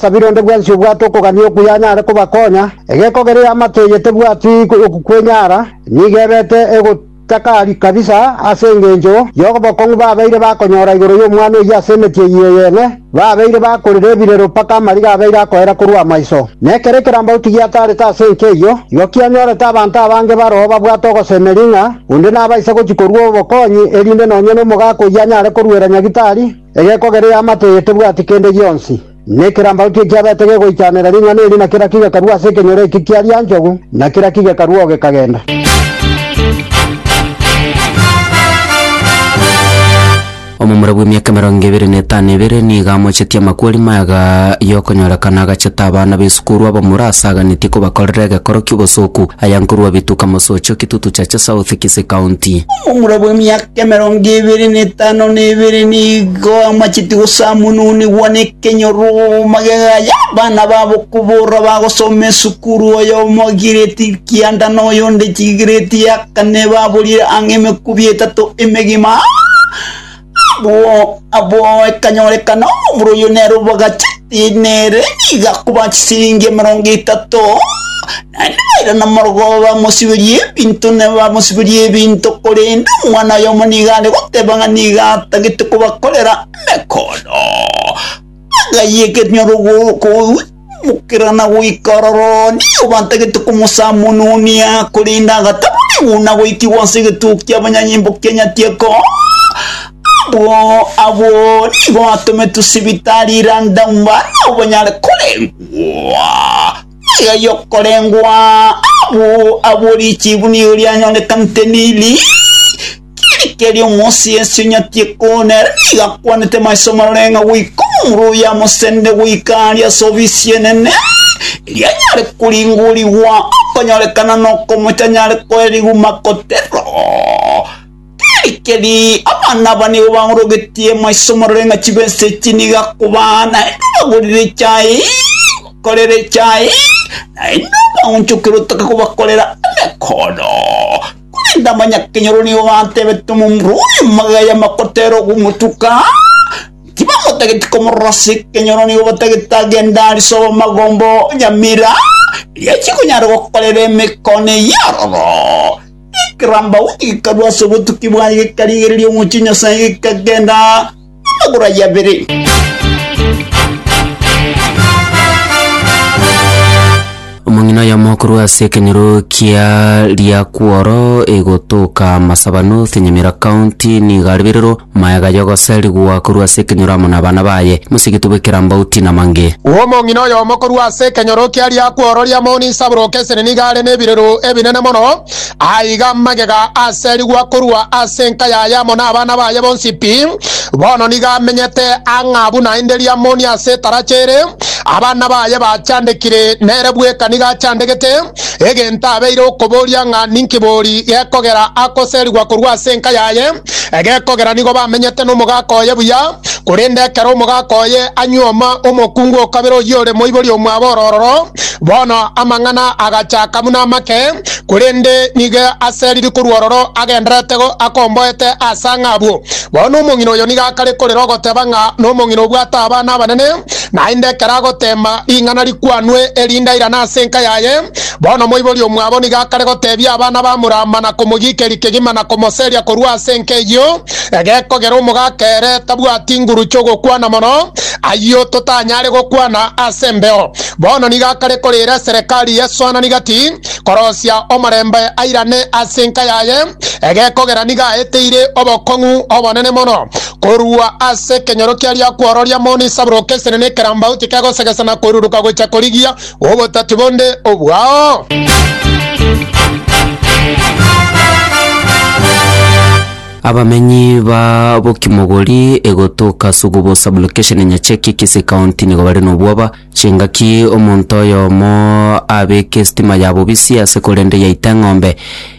Kabere onde bwensi obwate okogania okuya anyare kobakonya, egeko geria y'amato eye tebwati okukwenyara, nigo ebete egotakari kabisa ase engencho y'obokong'u babeire bakonyora igoro y'omwana oyio ase emeti eyio eyene, babeire bakorera ebirero mpaka amariga abeire akoera korwa amaiso. Na ekero ekerambauti giataarete ase enka eyio, igo kianyorete abanto abange baroo babwate ogosemeria ng'a onde nabaisa gochia korua obokonyi, erinde nonya nomogaaka oyio anyare koruera nyagitari. Egekogera ya amato eye tebwati kende gionsi, na ekerambaroto ekiabete gegoichanera ring'ana eri, na kera kigekarua ase ekenyoro eki kia rianchogu, na kera kigekarua oo gekagenda. Omomura bw'emiaka emerongo ebere na etano ebere nigo amochetie amakweri mayaga y'okonyorekana agachete abana b'esukuru abamura ase aganetie kobakorera egekoro ki'obosoku aya nkorwa Bituka Mosocho, Kitutu Chache South, Kisii County. Omomura bw'emiaka emerongo ebere na etano na ebere nigo amacheti gosamununigwa nekenyoroma gegacha, abana babo koborora bagosoma esukuru, oyomo giredi ya kianda na oyonde giredi ya kane baborire ang'e emekubi etato emegima. Abwo abwo ekanyorekana omura oyio nere obagacheti, nere nigo akoba chisiringi emerongo etato. Naende baira nomorogoba bamosiberie ebinto, na bamosiberie ebinto, korende omwana oyomo nigo are goteba ng'a nigo atagete kobakorera emekoondo. Bagayia ekenyoro koimokera na goika ororo, nigo batagete komosamononia, korende agataboregwa na goikigwa ase egetugo ki'abanyanyimbo kia Nyatieko. Abwo abwo nigo batometwe sibitari London bare nabwo banyare korengwa. Iga yokorengwa amo abwo richibu nigo rianyorekanete Nili, keri keri omosi ensi onyati ekoonera nigo akwanete maiso marore ng'a goika omorwa oye amosende goika aria ase ofisi enene, erio anyare koringorigwa okonyorekana na okomocha anyare koerigwa makoterero. Rigerii, abana aba nigo baorogetie maiso morore ng'a chibesa echi niga kobaa naende bagorire echae, bakorere echae, naende baonchokere otoke kobakorera emekoodo. Korende amanyakenyoro nigo gatebete omomura oria magega makotera ogomotuka, tibamotageti komorora ase ekenyoro nigo batagete agende aa risoba magomba o nyamira, riachia konyara gokorera emekono eyio aroro. Ekeramba gikarwa ase obotuki bwaye, gikarigereria omochie Nyasae, gikagenda amagoro aye abere. omong'ina oyomo korwa ase ekenyoro kia riakworo egotoka masabano senyamira county nigo aribererwo Mayega y'ogoserigwa korwa ase ekenyoro amo nabana baye, mosigiti bw'ekerambe outi namange. Omong'ina oyomo korwa ase ekenyoro kia riakworo ria moni isaburoke eseni nigo are nebireru ebinene mono, aiga amagega aserigwa korwa ase enka yaye amo nabana baye bonsi pi. Bono nigo amenyete ang'a buna inde ria moni ase etaracha ere, abana baye bachandekire, nere bweka nigo achandegete, egento abeire okoboria ng'a ninki bori gekogera akoserigwa korwa ase enka yaye. Egekogera nigo bamenyete nomogaka oye buya, korende ekero omogaka oye anyuoma omokungu o kabere oyio ore moibori omwabo ororo, bono amang'ana agachaka buna amake, korende nigo aseriri korwa ororo agendererete go akomboete ase ang'e abwo. Bono omong'ina oyo nigo akare korera ogoteba ng'a nomong'ina obwate abana abanene, naende ekero agoteema ring'ana rikwanwe erinde airane ase enka yaye, Bono omoibori omwabo nigo akare gotebia abana ba Murama na komogiikeria kegima na komoseria korwa ase enka eyio, egekogera omogaka ere tabwati nguru chi'ogokwana mono, ayio totanyare gokwana ase embeo. Bono nigo akare koreera eserekari y'esoanani gati, korosia omorembe airane ase enka yaye, egekogera nigo aeteire obokong'u obonene mono korwa ase ekenyoro kiaria kwororia moni Sabuloka esenene ekerambauti kegosegesa na koiruruka gocha korigia obotati bonde obwao? Abamenyi ba Bokimogori egotoka Sugubo sublocation Nyacheki Kisii County nigo bare nobwoba chingaki omonto oyomo abeke estima ya bobisi ase korende yaita eng'ombe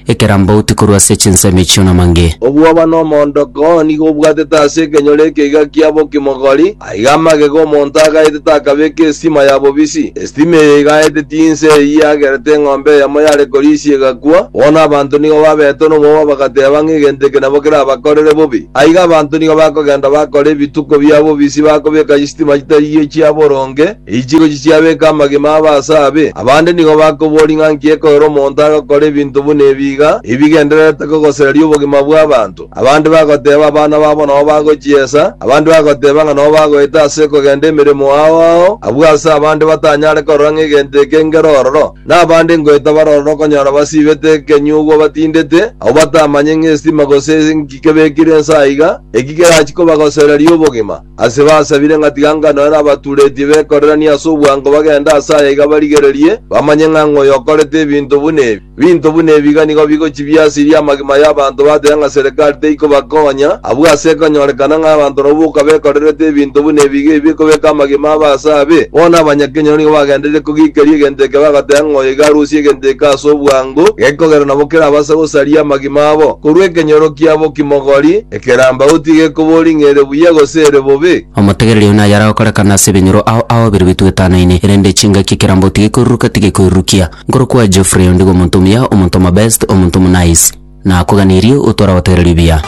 ekerambauti korwa ase chinsemo echio namange. Obwoba na omoondoko nigo obwatete ase ekenyoro ekeiga kia bokimogori, aiga amagega omonto agaete takabeka esitima ya bobisi. Esitima eye igaete tinse eye yagerete eng'ombe eyemo yare korisia egakwa, bono abanto nigo babetwe nomobaba bagateeba ng'a egento eke nabo kerabakorere bobe. Aiga abanto nigo bakogenda bakora ebituko bia bobisi bakobeka chisitima chitari echia boronge, Eichirochio chiabeka amagima abe ase abe, abande nigo bakoboria ng'a nki ekorera omonto agakora ebinto buna ebi iga, ebigendererete kogosereria obogima bw'abanto. Abande bagoteeba abana babo nao bagochiesa, abande bagoteeba ng'a nao bagoeta ase kogenda emeremo ao ao, abwo ase abande batanyare korora ng'a egento eke ngero ororo, na abande ngoeta bare ororo okonyora basiibete ekenyugwa batindete, abwo batamanye ng'a esitima gose nki kebekire inse aiga, eki kerachie kobagosereria obogima. Ase basabire ng'a tiga ngano ere abaturetie bekoreranie ase obwango bagende ase aya iga barigererie, bamanye ng'a ng'oyo okorete ebinto buna ebi. Binto buna ebi iga nigo bigochia biasirie amagima y'abanto batebe ng'a serekari teikobakonya, abwo ase ekonyorekana ng'a abanto nabwo boka bekorerete ebinto buna ebi iga ebi bikobeka amagima abo ase abe. Bono abanyakenyoro nigo bagendereire kogikeria egento eke bagoteba ng'oyo iga arusie egento eke ase obwango, gekogera nabo kerabase gosaria amagima abo korwa ekenyoro kiabo kimogori, Ekerambauti gekobori ng'a ere buya gose ere bobe. Omotegereri oyo naye aragokorekana ase ebenyoro ao aobeirwe bitugo etanoine, erende chingaki ekerambauti gekoiruruka tigekoirurukia. Nkorokwa Geoffrey ondigo omonto omuya, omonto omobest, omonto omonaice. Nakoganirie otware ogotegereria buya.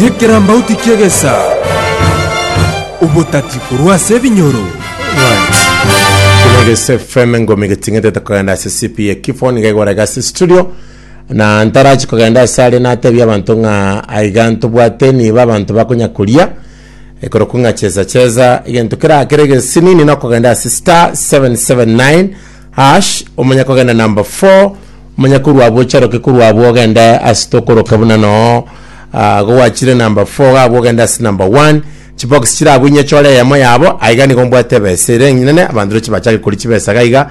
Nekerambauti ki'egesaa, obotati korwa ase ebinyoro. Kino Egesu FM engomi geting'etete kogenda ase CP ekifo nigo egorega ase studio. Na ntarachi kogenda ase aria natebie abanto ng'a aiga ntobwate nigo abanto bakonya koria ekorokwa ng'a cheza cheza egento kera kere gesinini nokogenda ase star 779 hash omanya kogenda number 4 omanya korwa abwo ocharoke korwa abwo ogende ase tokoroka buna noo ah, gogwachire number 4 gabwo ogende ase number 1 chibox chirabwo inye chore eyemo yabo aiga nigo mbwate ebesa ere eng'inene abanto roche bachake koria chibesa gaiga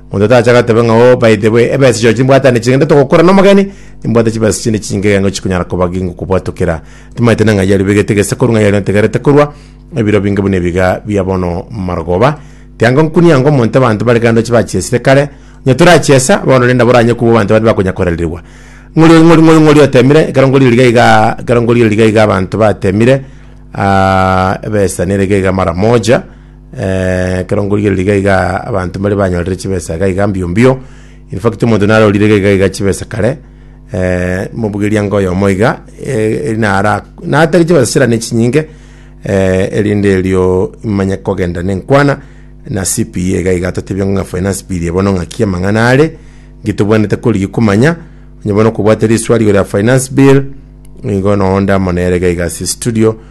Monto tacha agatebe ng'a, Oh, by the way, ebesa echo chimbwate ne chingende togokora nomogeni, nimbwate chibesa chinde chinge egengo chikonyara koba gingokobwatokera. Timanyete neng'ai yario bigete gese korwa ng'a yario ntegerete korwa ebiro binge buna ebiga bia bono marogoba. Tiango nkunia ng'a omonto abanto bare kando chibachiesire kare, onye torachiesa, bono rende nabo oranye kubua abanto baria bakonya koraririgwa. Ng'ori ori ng'ori ng'ori ng'ori otemire, ekero ng'ori ori iga iga ekero ng'ori ori iga iga abanto batemire, ah, ebesa nere iga iga mara moja. Ekero nkorigereria iga iga abanto mbare banyorire chibesa iga iga mbio mbio, in fact omonto narorire iga iga iga chibesa kare, mobugeria ng'a oyomo iga, eri nara natari chibesa chira ne chinyinge, erinde erio manye kogenda na enkwana na CPA iga iga atotebie ng'a finance bill eye bono ng'aki amang'ana are, nki tobwenerete korigia komanya, onye bono okobwate riswari igoro ya finance bill, nigo noo ndamo nere iga iga ase estudio.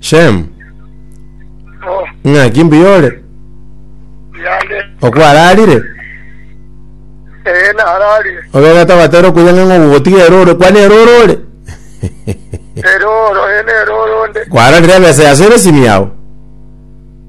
Shem, Oh, ng'aki mbuya ore? yande. Okwararire? Ee, nararire. Obegete ogatera okuya ng'a ng'o gogotiga eroro, kwana eroro ore? Eroro, ee, neroro nde. Kwararire ebesa yase ere simu yao?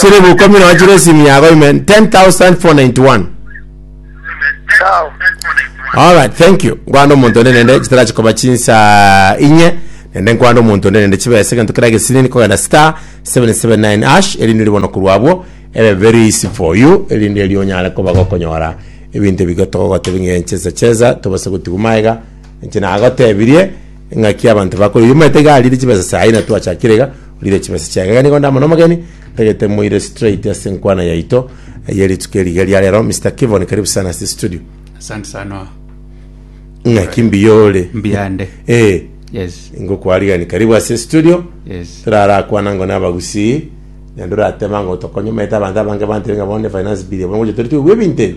Chire bukumi nonya chire esimu yago amen 10491 Sawa. Alright, thank you. Nkwanda omonto onde nende chitara chikoba chinsa inye nende nkwanda omonto onde nende chibesa egento kera gesinini kogenda star 779 ash erinde ribono korwa abwo ebe very easy for you erinde eri onyare koba gokonyora ebinto ebigo togogotebia ng'a enchesa chesa tobase gotigwa maega inche nagotebirie ng'aki abanto bakore oyomanyete iga arire chibesa sayi na twachakire iga Rire chimesa chiaye. Iga nigo ndamana omogeni, ntagete moire straight ase enkwana yaito eye rituko eri iga ria rero. Mister Kivon karibu sana ase studio. Asante sana. Ng'aki mbuya ore? Mbuya nde. Eh, Yes. ngokwarigereria karibu ase studio. Yes. turarakwana ngo nabagusii naende oratema ngo tokonye omanyete abanto abange bantebe ng'a bono ne finance bill bono gocha tori togigwa ebinto ebi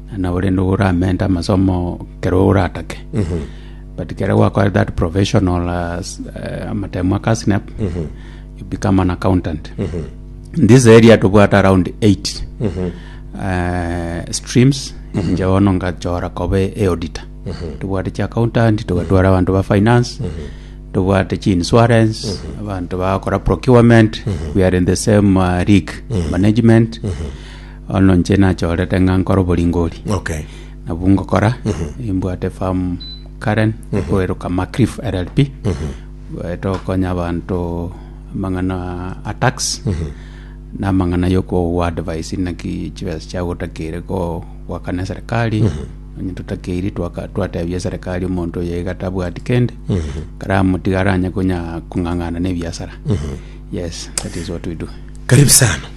Naende ore nigo oramente amasomo kero oratake but kere gwakorire that professional as, eh, amatemu aka snap you become an accountant in this area tobwate around 8 eh, streams inche bono ngachora kobe eauditor tobwate chi accountant togatwara abanto ba finance tobwate chi insurance abanto bagakora procurement we are in the same uh, league management Bono inche nachorete ng'a nkore oboringori Okay. nabwo ngokora imbwate farm karen koeroka macrif rlp Eh, tokonya abanto amang'ana a tax na amang'ana yokowa advice naki chibesa chiago otakeire ko- goakana eserikali onye totakeiri twaka- twatebia eserikali omonto oyo iga tabwati kende karamotiga aranye konya kong'ang'ana na ebiasara yes that is what we do Karibu sana.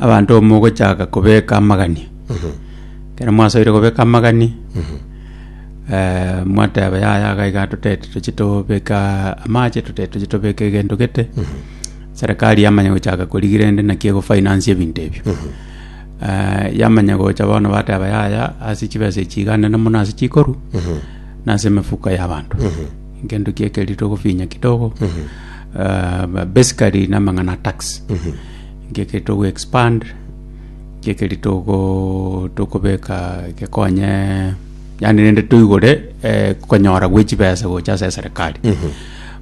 Abanto mogochaka kobeka amagani, ekero mwasoire kobeka amagani, eh, mwateba yaya iga iga totete tochie tobeka amache, totete tochie tobeka egento gete, serikari yamanya gochaka korigia rende naki egofinance ebinto ebio. Eh, yamanya gocha bono bateba yaya ase chibesa echi iga nene mono ase chikorwa, nase emefuko y'abanto. Egento kia ekerio togofinya kidogo, eh, basically na amang'ana a tax. Nkeki togo expand nkeri togo tokobeka gekonye yani rende toigore eh, konyora gwe chibesa gocha ase serikali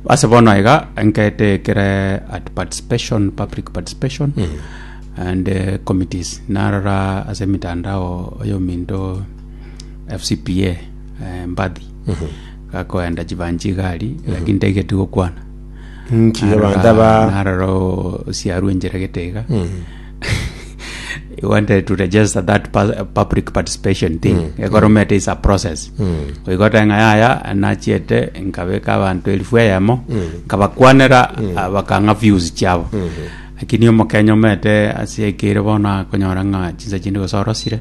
ase bono iga nkete kere at participation public participation and eh, committees narora ase mitandao oyo minto FCPA eh, mbadhi gakoenda chibanchi igari lakini taigetigokwana Inki abanto Arora- aba narora osiarwe enchera gete iga he wanted to register that pa- public participation thing ekoromete is a process oigote ng'a yaya nachiete nkabeka abanto elifu eyemo nkabakwanera ah, bakang'a views chiabo lakini omokenya omete ase ekeire bono akonyora ng'a chinsa chinde gose orosire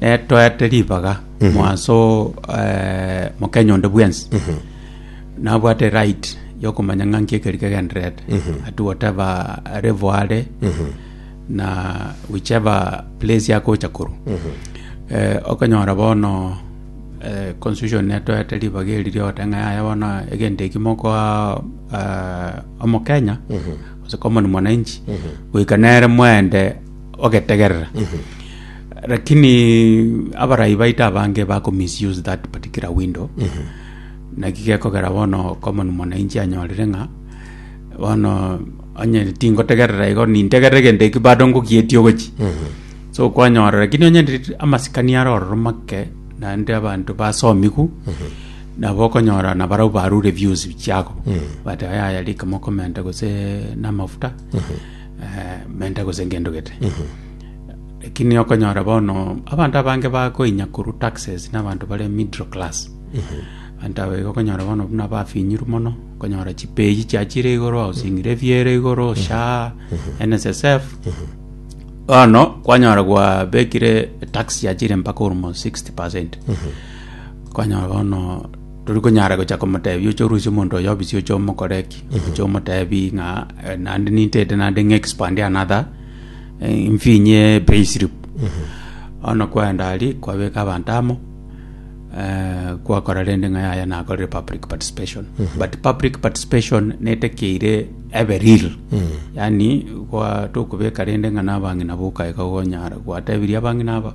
Netoete ribaga mwanso eh, mokenya onde bwensi nabwate right yokomanya ng'a nki ekeri kegenderete at whatever level are na whichever place akocha korwa Eh, okonyora bono eh, constitution netoete ribaga eri riogote ng'a yaya bono egento eki mokoa eh, omokenya gose common mwananchi goika nere mwende ogetegerera lakini abarai baito abange bako misuse that particular window naki gekogera bono common mwananchi anyorire ng'a bono onye tingotegerera igo nintegerere egento eki bado ngogietie ogochi so kwanyorora lakini onye ndiri- amasikani are ororo make naende abanto basomigu nabo okonyora nabarabwo barure views chiago bateba yaya rika mokomenta gose namafuta eh, menta gose ngendo gete lakini okonyora bono abanto abange bakoinya korwa taxes n'abanto bare middle class abanto abo igo okonyora bono buna bafinyiru mono okonyora chipeji chiachire igoro housing levy ere igoro sha nssf bono kwanyora gwabekire tax yachire mpaka almost 60 percent kwanyora bono Tori konyara gocha komoteebia oche orusie omonto oyo obisi oche omokore ki? Oche omoteebie ng'a eh, naende nintete naende ng'a expand another eh, mfinye pay slip. Ono kwaenda ari kwabeka abanto amo eh, kwakora rende ng'a yaya nakorire public participation. But public participation netekeire ebe real. Yani kwa tokobeka rende ng'a nabang'ina boka iga gonyara gwatebirie abang'ina aba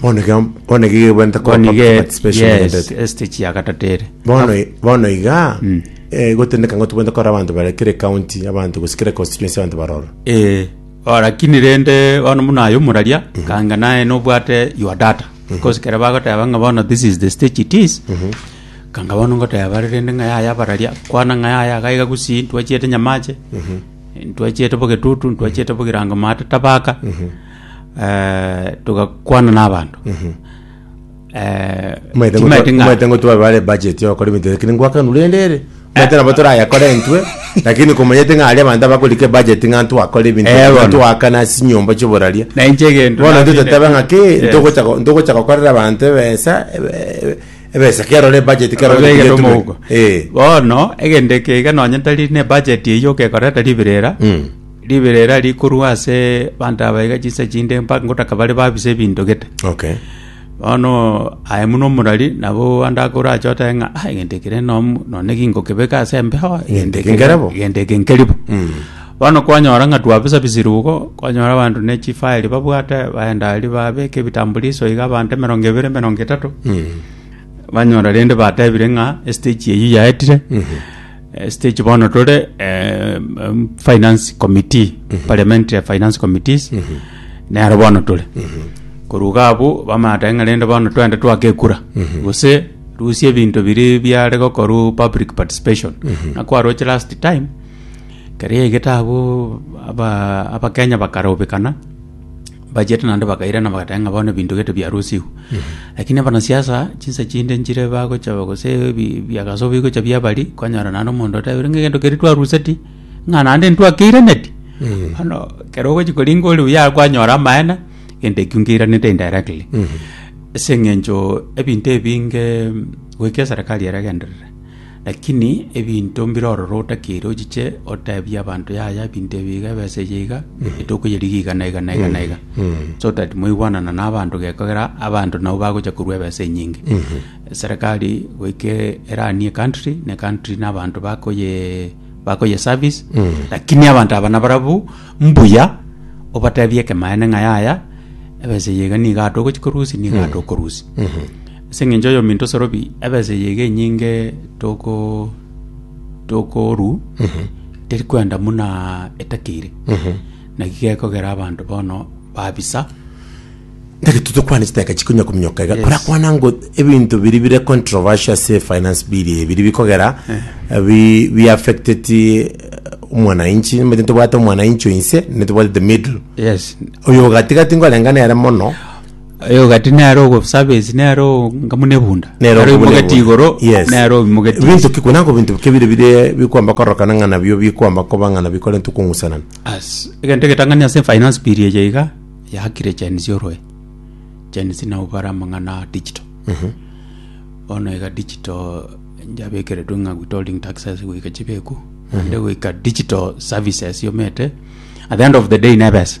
Bono iga bono iga igebwente ko Bono iga participation yes, egenderete. stage ya gatato ere. bono i- bono iga Mm. eh, gotendeka ng'a tobwente kora abanto bare kere county abanto gose kere constituency abanto baroro Eh, oh, lakini rende bono muna aye omoraria kanga naye nobwate your data because kere bagoteba ng'a bono this is the stage it is kanga bono ngoteba bare rende ng'a yaya abararia kwana ng'a yaya agaiga gusii ntwachiete nyamache ntwachiete bogetutu ntwachiete bogirango mate tabaka eh, togakwana n'abanto Eh, Mwaete timaete ng'a- mwaete ngotwa bare budget yokora ebinto lakini ngwakanu rende ere mwaete nabo torayakore intwe lakini komanyete ng'a aria abanto abakorike budget ng'a ntwakore ebinto Eh, bono. ntwakana ase chinyomba chioboraria na inche egento bono nabinde- ntotatebe ng'a ki Yes. ntogocha ko- ntogocha gokorera abanto ebesa ebe- ebe- ebesa kerore budget kerore Ororege budget tomo tume. huko. Eh. bono egende keiga nonye tari ne budget eyio okekorera tari birera Mm. Riberera rikorwa ase abanto aba iga chinsa chinde mpaka ngotaka bare babise ebinto gete. Okay. Bono aye buna omorari nabo ande ake orache otae ng'a "Ah, egento eke rende nom- nonye ki ngokebeka ase embeho Egento eke nkerebo." egento eke nkeribo bono kwanyora ng'a twabisabisire igo kwanyora abanto ne chifaeli babwate baenda aria babeka ebitambuliso iga abanto emerongo ebere emerongo etato banyora rende batebire ng'a estage eyio yaetire Stage bono tore finance committee parliamentary finance committees nero bono tore koruga abu bamata ng'a rende bono twende twake ekura gose rusia ebinto biri biare gokoru public participation na kwaroche last time keria egete abu aba abakenya bakarobekana Bachiete naende bakairana bagateba ng'a bono ebinto gete biarusigwe. Lakini abanasiasa chinsa chinde nchire bagocha gose ebi- ebiagaso bigocha biabari, kwanyora naende omonto otebire ng'a egento keria twaruseti, ng'a naende ntwakeiraneti. Bono ekero ogochi koringa ore buya kwanyora amaene, egento ekio nkeiranete indirectly. Ase eng'encho ebinto ebinge goika eserekari eragenderere. Lakini ebinto mbire ororo otakeire ochiche otebie abanto yaya ebinto ebi iga ebesa eye iga etouko yerigio iga na iga na iga na iga so that moigwanana na abanto gekogera abanto nabo bagocha korua ebesa enyinge serikali goika eranie country ne country na abanto bakoye bakoye service lakini abanto aba nabarabwo mbuya obatebie ekemaene ng'a yaya ebesa eye iga niga togochia korusia niga tokorusia Ase engencho y'ominto sorobi, ebesa eye iga enyinge tokorua teri kwenda buna etakeire, na iga gekogera abanto bono babisa. Tari totokwana chiteka chikonya kominyoka iga korakwana ngo ebinto biri bire controversial ase finance bill eye biri bikogera bi bi affected eh, omwanainchi nimanyete tobwate omwanainchi oinse netobwate the middle Yes, oyo ogatigati nkorengane ere mono Aye ogati nere ogosabensi nere onga buna ebunda. Nero Nere obwo oimogeti nebwo. igoro Yes. nere oimogeti Ebinto inse. ki kuna nko binto bike bire bire bikwamba kororokana ng'a nabio bikwamba koba ng'a nabio bikorentwe kong'usanana. As egento egetang'ani ase finance bill eye iga yakire Gen Z oroe. Gen Z nabo bare amang'ana a digital. Bono iga digital yabekeretwe ng'a withholding taxes goika chibeku naende goika digital services omanyete at the end of the day nebesa.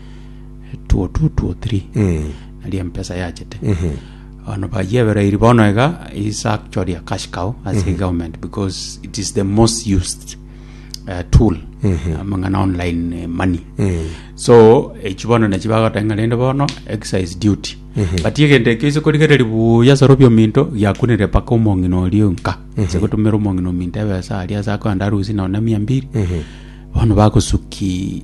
tuo tu tuo tiri nari empesa yachete ono bayebereiri bono iga is actually a cash cow as a government because it is the most used uh, tool amang'ana online eh, money so echi bono nachi bagoteng'a rende bono excise duty but egento ekio ise korigereri buya sorobia ominto giakunire paka omong'ina oria nka ase gotumera omong'ina ominto ebesa aria ase akoenda arusi nonye na mia mbiri bono bagosuki